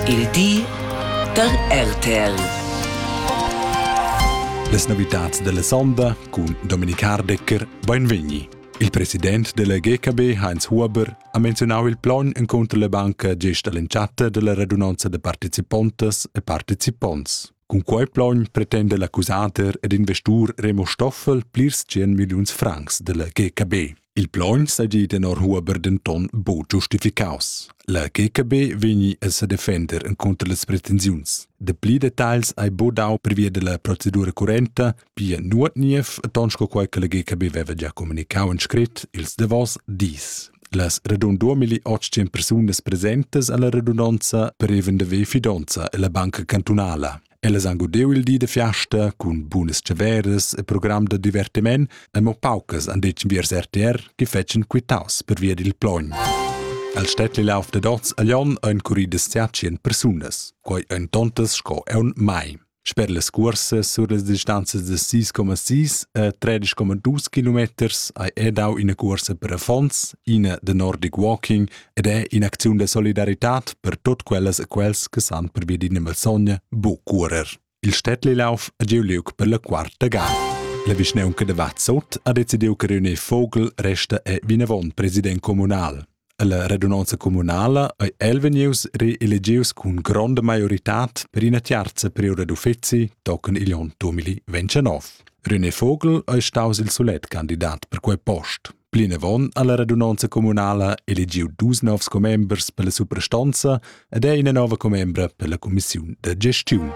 Il di da RTL. Les novitats della sonda cun Dominik Hardecker, beinvegni. Il president della GKB Heinz Huber ha menzionau il plogn encontro la banca gest all'entschatta della radunanza de participontas e participonts. Cun quei plogn pretende l'accusator ed investur Remo Stoffel plirs 100 milliuns francs della GKB. Il plaun sedi tenor Huber denton buc giustificaus. La GKB vegni a sedefender encunter las pretensiuns. De pli detagls hai bu dau pervia della procedura currenta, pia nuot niev ton sco quei che la GKB veva già comunicau en scrit ils davos dis. Las radun 2800 persunas presentes alla radunanza preven de ve fidonza e la banca cantunala. Ellas han gudeu il di da fiasta cun bunas tscheveras e program da divertiment e mo paucas han detg viers RTR che fetschen quitaus per via dil plogn. El Städtli lauf da dots a Jon ein curridas zertschien persunas, quai ein tontas sco eun mai. Sper las cuorsa sur las distanzas de 6,6 e 13,2 km hai edau ina cuorsa per affons, ina de Nordic Walking ed è in'acziun da solidaritad per tut quellas e quels che san pervia d'ina malsogna bu curer. Il Städtli lauf è giu liug per la quarta gada. La vischnaunca de Vazzot ha decidiu che riunir Vogel resta è vinavon president communal. La radunanza communala ei el vegnius reelegius cun gronda maioritad per ina tiarza periode d'uffizi tochen igl onn 2029. René Vogel ei staus il sulet candidat per quei post. Plinavon ha la radunonza communala elegiu dus novs commembers per la suprastanza ed è ina nova commembra per la cumissiun da gestiun.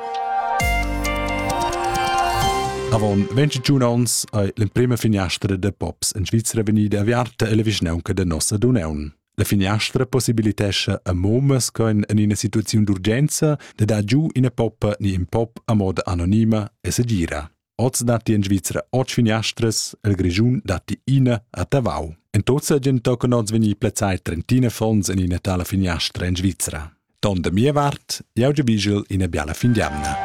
Avon 21 onns ei l'emprema finiastra da pops en Svizra vegnida aviarta ella vischnaunca da nossa Duneun. La finiastra possibilitescha a momas che en ina situaziun d'urgenza de dar giu ina poppa ni in pop a moda anonima e segira. Oz datti in Svizra otg finiastras, il Grischun datti ina a Tavau. En tuzza gen tochen oz vegni plazzai trentina fons en ina tala finiastra en Svizra. Ton da mia vart, jau giubigel ina biala fin d'jamna.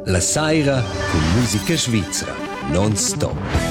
La saira cun musica svizra, non stop.